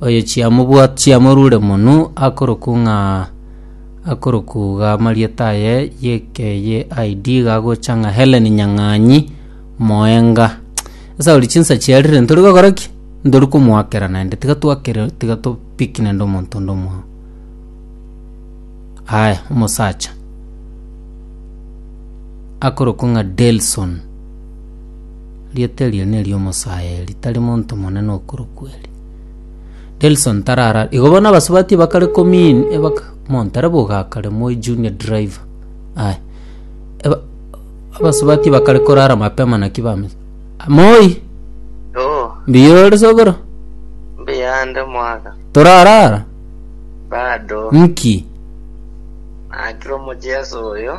Oyo chiamobwate chiamorure monu akoroku ng'a akorokuga amarieta aye yekeye ID gagocha ng'a Helen Nyang'anyi moenga. Sasa ori chinsa chiarire ntori gokora ki? Ntori komoakera naende tiga twakere tiga to pick naende omonto onde omwao. Aya omosacha akorokwa ng'a Delson. Rieta erio neri'omosaeri, tari monto monene okorokwa eri. Delson tarara igo bono abasubati bakare komin ebaka montare bogakare moi junior driver aye eba abasubati bakare korara mapema naki bame moi Oh, mbiyo ore sogoro mbiyande mwaka. torarara Bado. nki Nakire omojeso oyo.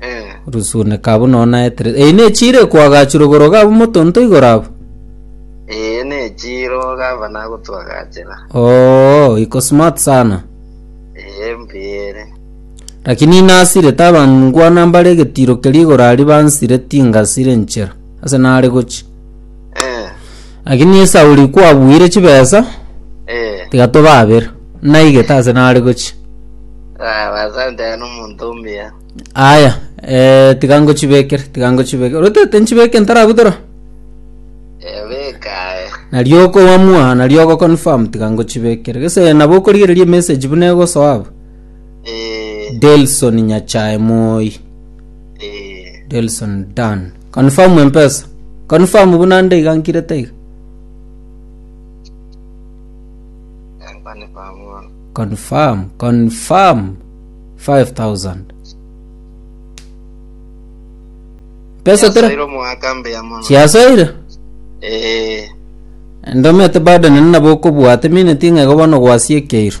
Eh. Rusuneka abwo nonya naeterere. Eyi nechire kwagachirwe igoro gabo motonto igoro abo. Eye nechiro gava nagotwagachera. Oo, iko smart sana. Eye mbiere. Lakini nasire tabangwana mbare getiro keri igoro ari bansire tingasire nchera. Ase nare gochi. Eh, Lakini Esauli kwabuire chibesa, eh. tigatobabera, naigete ase nare gochia. Ah, basante n'omonto omuya. Aya, eh, tiga ngochibekere, tiga ngochibekere. Orotete nchibeke ntarabutora? Eh, beka, eh. Nario okowamua, nario ogoconfirm, tiga ngochibekere. Gese nabo okorigereria emessage buna egosoa abwo. Eh, Delson Nyachae Moi. eh. Delson Dan. Confirm mpesa. Confirm buna nde iga nkirete iga. Confirm, confirm 5000. Pesa tera Yasoire omwaka mbuya mono chiasoire. Eh, Ndomete bado nene nabo okobwate mineti ng'ego bono gwasiekeirwe.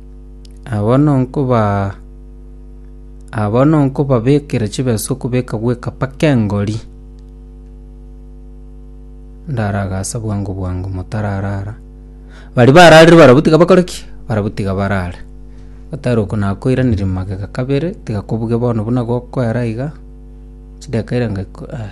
Abwo nonkobabekera chibesa okobeka gweka mpaka engori, ndaragase bwango bwango motararara. Baria bararire barabwo tiga bakore ki? Barabwo tiga barare. Otari oko nakoiraneria magega kabere, tiga kobuge bono buna gokoera iga, chidakika irenga iko eh.